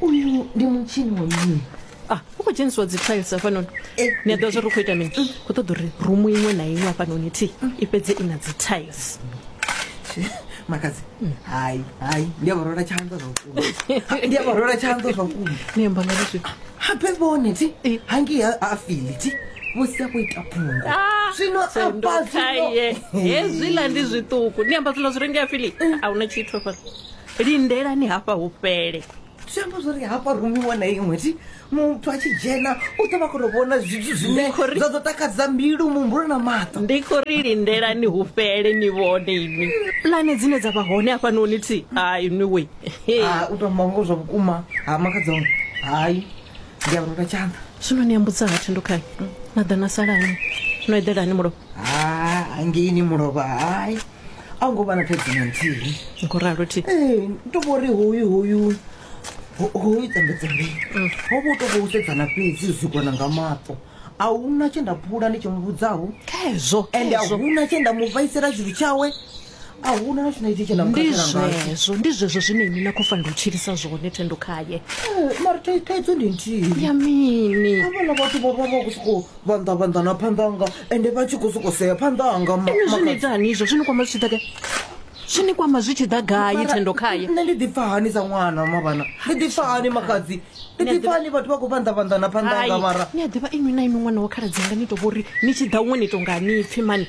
uyu ndi mutshini wa mini ah u khou dzhenisiwa dzi tiles hafhanoni eh. ni a ḓivha zwa ri khou ita mini mm. khou ṱoḓa uri rumu iṅwe na iṅwe hafhanoni thi mm. i fhedze i na dzi tiles makadzi mm. hai hai ndi a vha rwela tshanḓa zwa vhukuma ndi a vha rwela tshanḓa zwa vhukuma ni amba nga zwi habe vhone thi eh. hangi a fili thi vho sia khou ita phungo ah, zwino apazwino hezwiḽa ndi zwiṱuku ni amba zwiḽa zwi rengea fili a hu na tshithu hafhano lindelani hafha hu fhele zwi amba zwori hafha rumi iṅwe na iṅwe ti muthu a tshi dzhena u ḓo vha kona vhona zwithu zwine zwa ḓo takadza mbilu muhumbulo na maṱo ndi khou ri lindelani hu fhele ni vhone inwi pulane dzine dza vha hone hafhanoni thi hai inwi we u tou mango zwa vhukuma ha makadzau hai ndi a vhurota tshanḓa zwino ni ambudza ha thendo khani na ḓa na salani no eḓelani mulovha ha ngeini mulovha hai a hu ngo vha na thaidzo na nthihi ndi khou ralo thi ee to vho ri hoyu hoyu ho- hoyu tsembetsembei ho vha u to vha u sedzana fhedzi u sikwana nga maṱo a hu na tshe nda phula ndi tshi mu vhudzaho khezwo ende a khezwo hu na tshe nda mu vhaisela tshithu tshawe a hu na na tshina itshi tshe nda mu ndi khakhela ngatsho zwezwo ndi zwezwo zwine ini na khou fanela u tshilisa zwone thendo khaye Eh, mara thai- thaidzo ndi nthihi ya mini havhala vhathu vho vha vha khou sokou vhanḓa vhanḓa na phanḓa anga ende vha tshi khou soko sea phanḓa anga ini zwi ni ita hani izvo zwi ni kwama zwi tshi ḓa gai zwi ni kwama zwi tshi ḓa gai thendo khaye nṋe ndi ḓipfa hani sa ṅwana mavhana ndi ḓipfa hani makhadzi ndi ḓipfa hani vhathu vha khou vhanḓa vhanḓa na phanḓa anga mara ni a ḓivha inwi na inwi ṅwana wa khaladzi anga ni to vhori ni tshi ḓa huṅwe ni to nga ni pfhi mani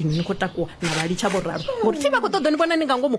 Inwi ni khou takuwa na vha litsha, vho ralo, ngo ri, Thi vha khou ṱoḓa u ni vhona ni nga ngomu.